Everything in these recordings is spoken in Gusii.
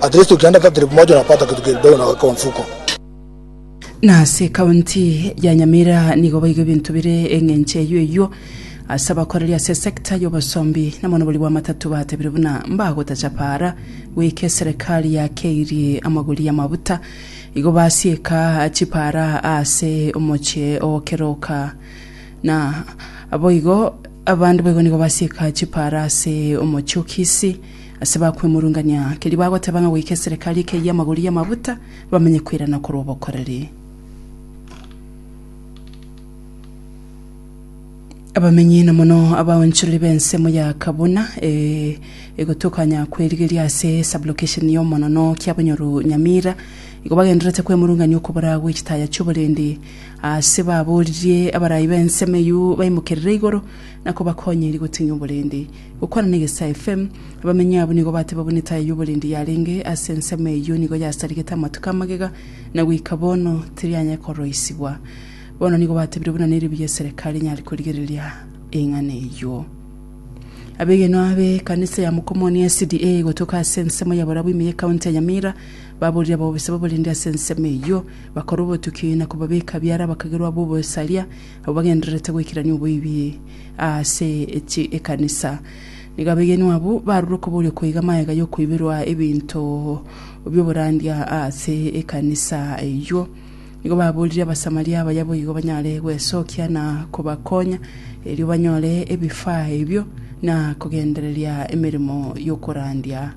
At least ukienda hata trip moja unapata kitu kidogo na weka mfuko. Na ase ekaunti ya Nyamira nigo baiga ebinto bire eng'encho eyio eyio ase abakoreri ase sector y'obosombi na mono boria bw'amatatu batebire buna mbagotacha para goika eserekari yakeirie amagori y'amabuta igo basieka chipara ase omoche ogokeroka na boigo abande boigo nigo basieka chipara ase omoche o Kisii Ase bakwemurungania, keria bagoteba ng'a goika eserekari ekeyie amagori y'amabuta, bamenye koirana korwa obokoreri. Abamenyi na mono abaonchoreri b'ensemo ya Kabuna egotokanya kw'erigeria ase Sub-location y'omonono Kiabonyoru Nyamira igo bagendererete kwemurungania okobora gwe chitaya chi'oborendi ase baboririe abarayi b'ensemo eyio baimokerere igoro na kobakonyeria gotinya oborendi. Gokwana na Egesae FM, abamenyi abwo nigo bateba buna etaaya y'oborindi yarenge ase ensemo eyio nigo yasarigete amatuko amagega, na goika bono terianya koroisigwa. Bono nigo batebire buna neribuya eserekari enyare korigereria eng'ana eyio. Abegenwa b'ekanisa ya Mokomoni ya SDA gotoka ase ensemo ya barabwo ime y'ekaunti ya Nyamira baborire abaobosia b'oborindi ase ensemo eyio, bakora obotuki na kobabeka biara abakagerwa b'obosaria Abwo bagendererete goikerania oboibi ase ekanisa nigo abegenwa abwo barure okoboria okoiga magega y'okoibirwa ebinto bi'oborandia ase ekanisa eyio. Nigo baboririe Abasamaria abaya boigo banyare gwesokia na kobakonya, erio banyore ebifaa ebio na kogendereria emeremo y'okorandia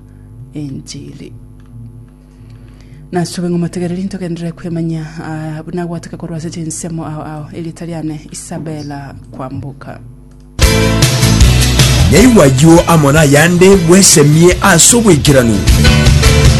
enchili. Nasobe ng'a motegereri ntogenderere kwemanya ah, buna gwataka korwa ase chinsemo ao ao erieta riane Isabella kwamboka Naigwa ayio amo nayande bwesemie ase obwaikeranu.